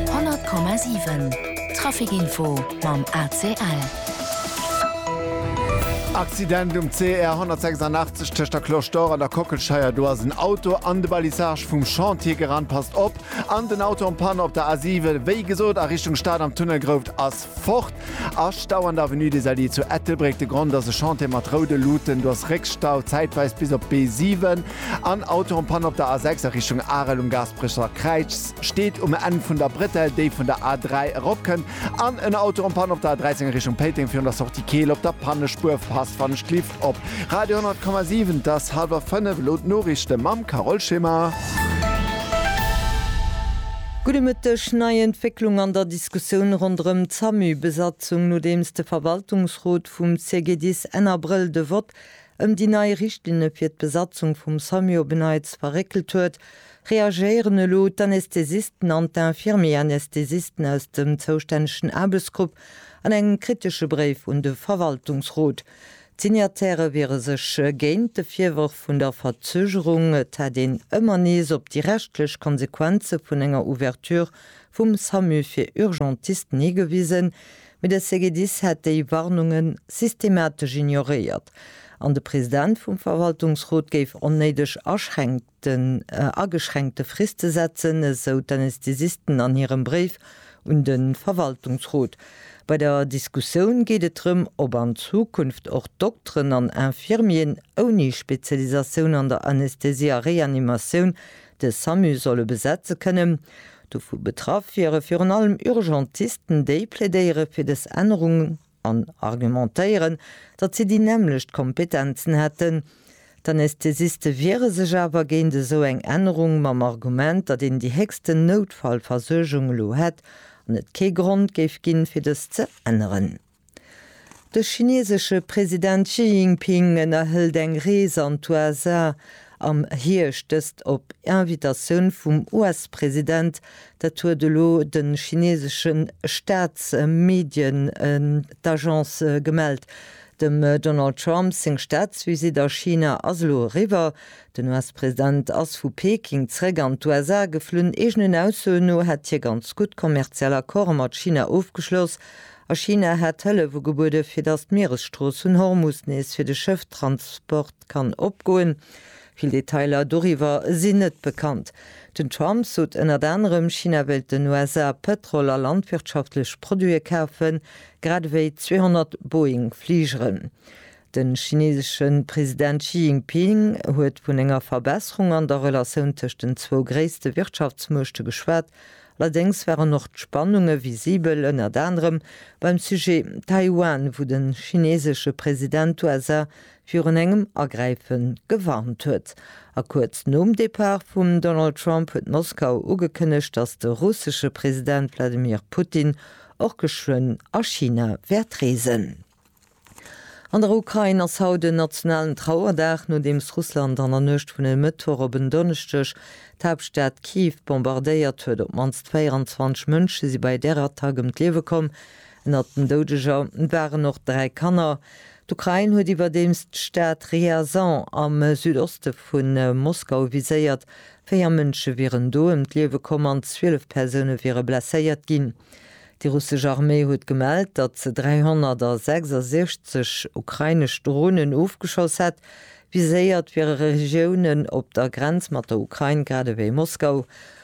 100,7 Traficinfo mam ACL. Accident um CR 186 tëscht der Cloche d'Or an der Kockelscheier, do ass en Auto an de Balisage vum Chantier gerannt, passt op! An den Auto en panne op der A7, wéi gesot a Richtung Stad am Tunnel Grouft ass. Fort ass Stau an der Avenue des Alliés zu Ettelbréck. De Grond ass e Chantier mat roude Luuten. Do ass Réckstau, zäitweis bis op d'B7. An Auto am Panne op der A6 a Richtung Arel um Gaasperecher Kräiz. Steet um Enn vun der Bretelle, déi vun der A3 eropkënnt. An en Auto am Panne op der A13 a Richtung Péiteng virun der Sortie Keel op der Pannespuer. Passt wann ech d'Lift. Op Radio 10,7 't ass halwer 5, elo d'Noriichte mam Carole Schimmer. Gudde Mëtteg, Nei Entwécklung an der Diskussioun ronderëm d'SAMU-Besatzung, nodeems de Verwaltungsrot vum CGDIS Enn Abrëll de Vott ëm déi nei Richtlinne fir d'Besatzung vum SAMU op e Neits verréckelt huet, reagéieren elo d'Anästhesisten an d'Infirmier-Anästhesisten aus dem zoustännegen Aarbechtsgrupp an engem kritesche Bréif un de Verwaltungsrot. D'Signatairë wiere sech géint de Virwërf vun der Verzögerung, et hätt een ëmmer nees op déi rechtlech Konsequenze vun enger Ouverture vum Samu fir Urgentisten higewisen, mee de CGDIS hätt déi Warnunge systematesch ignoréiert an de President vum Verwaltungsrot géif onnéideg aschränkt. den ageschränkte Frist ze setzen, esou d'Anästhesisten an hirem Bréif un de Verwaltungsrot. Bei der Diskussioun geet et drëm, ob an Zukunft och Dokteren an Infirmieren ouni Spezialisatioun an der Anästhesie a Reanimatioun de Samu solle besetze kënnen. Dovu betraff wiere virun allem Urgentisten, déi plädéiere fir dës Ännerung an argumentéieren, datt si déi nämmlecht Kompetenzen hätten. D'Anästhesiste wiere sech awer géint esou eng Ännerung mam Argument, datt een déi héchsten Noutfallversuergung elo hätt an et kee Grond géif ginn, fir dës ze änneren. De chinesesche President Xi Jinping ënnerhëlt eng Rees an d'USA, am Hierscht, dëst op Invitatioun vum US-President, dat huet elo de chineesesche Staatsmedien d'Agence gemellt. Dem Donald Trump seng Staatsvisitt a China ass elo eriwwer. Den US-President ass vu Peking zeréck an d'USA geflunn. Eegenen Aussoen no hätt hie ganz gutt kommerziell Accorde mat China ofgeschloss a China hätt Hëllef ugebuede fir datt d'Mieresstrooss vun Hormus nees fir de Schëfftransport Kann opgoen. Vill Detailer doriwwer sinn net bekannt. Den Trump sot ënnert anerem, China wéilt den USA Pëtrol a landwirtschaftlech Produite kafen, grad ewéi 200 Boeing-Fligeren. De chineesesche President Xi Jinping huet vun enger Verbesserung an der Relatioun tëscht den zwou gréisste Wirtschaftsmuechte geschwat. Allerdéngs waren och d'Spannunge visibel, ënnert anerem beim Sujet Taiwan, wou de chineesesche President d'USA virun engem Agräife gewarnt huet. A kuerz nom Depart vum Donald Trump huet Moskau ugekënnegt, datt de russesche President Wladimir Putin och geschwënn a China wäert reesen. An der Ukrain ass haut en nationalen Trauerdag, nodeems Russland an der Nuecht vun e Mëttwoch op en Donneschdeg d'Haaptstad Kiew bombardéiert huet. Op d'mannst 24 Mënsche si bei där Attack ëm d'Liewe komm. Ënnert den Doudeger waren och dräi Kanner. D'Ukrain huet iwwerdeems d'Stad Ryazan am Südoste vu Moskau viséiert. Véier Mënsche wieren do ëm d'Liewe komm an 12 Persoune wiere blesséiert ginn. Déi russesch Arméi huet gemellt, datt se 366 ukrainesch Dronen ofgeschoss hätt. Viséiert wiere Regiounen op der Grenz mat der Ukrain, grad ewéi Moskau.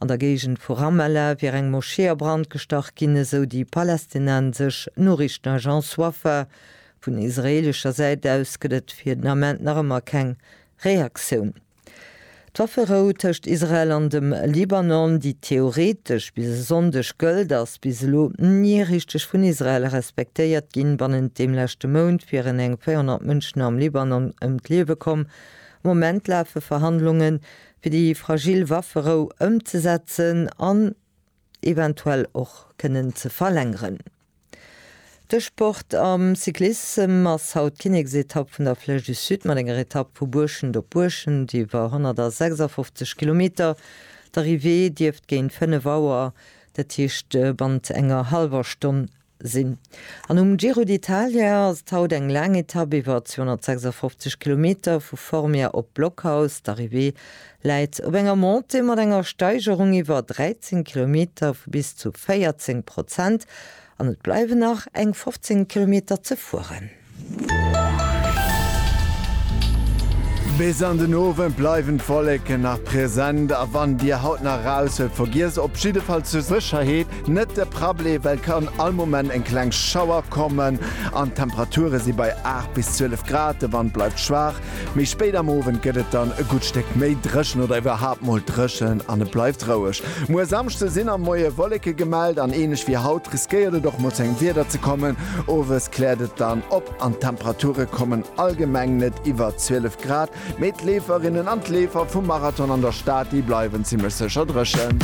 An der Géigend vu Ramallah wier eng Moschee a Brand gestach ginn, esou déi palästinensesch Noriichtenagence Wafa. Vun israeelescher Säit aus gëtt et fir den Ament nach ëmmer keng Reaktioun. D'Wafferou tëscht Israel an dem Libanon, déi theoretesch bis e Sonndeg gëllt, ass bis elo ni richteg vun Israel respektéiert ginn. Bannent deem leschte Mount wieren eng 400 Mënschen am Libanon ëm d'Liewe komm. Am Moment lafe Verhandlungen, fir déi fragil Wafferou ëmzesetzen an eventuell och kënnen ze verlängeren. De Sport am Cyclissem ass haut d'Kinneksetapp vun der Flèche du Sud mat enger Etapp vu Buerschent op Buerschent iwwer 156 Kilometer. D'Arrivée dierft géint 5 Auer, dat heescht bannent enger hallwer Stonn sinn. An um Giro d'Italia ass et haut eng laang Etapp iwwer 256 Kilometer vu Formia op Blockhaus. D'Arrivée läit op enger Montée mat enger Steigerung iwwer 13 Kilometer vu bis zu 14 Prozent an et bleiwen nach eng 15 Kilometer ze fueren. Bis an den Owend bleiwen d'Wolleken nach present a wann dir haut nach raus wëllt, vergiesst op jiddefall zur Sécherheet net de Parapluie, well et kann all Moment eng kleng Schauer kommen an d'Temperature si bei 8 bis 12 Grad. De Wand bleift schwaach Méi spéit am Owend gëtt et dann e gutt Stéck méi dréchen oder iwwerhaapt mol dréchen an et bleift roueg. Muer Samschde sinn am Moie Wolleke gemellt an ähnlech wéi haut riskéiert et och mol zu engem Wieder ze kommen. Owes kläert et dann op an d'Temperature kommen allgemeng net iwwer 12 Grad, mee d'Leeferinnen an d'Leefer vum Marathon an der Stad, déi bleiwen zimmlech sécher dréchen.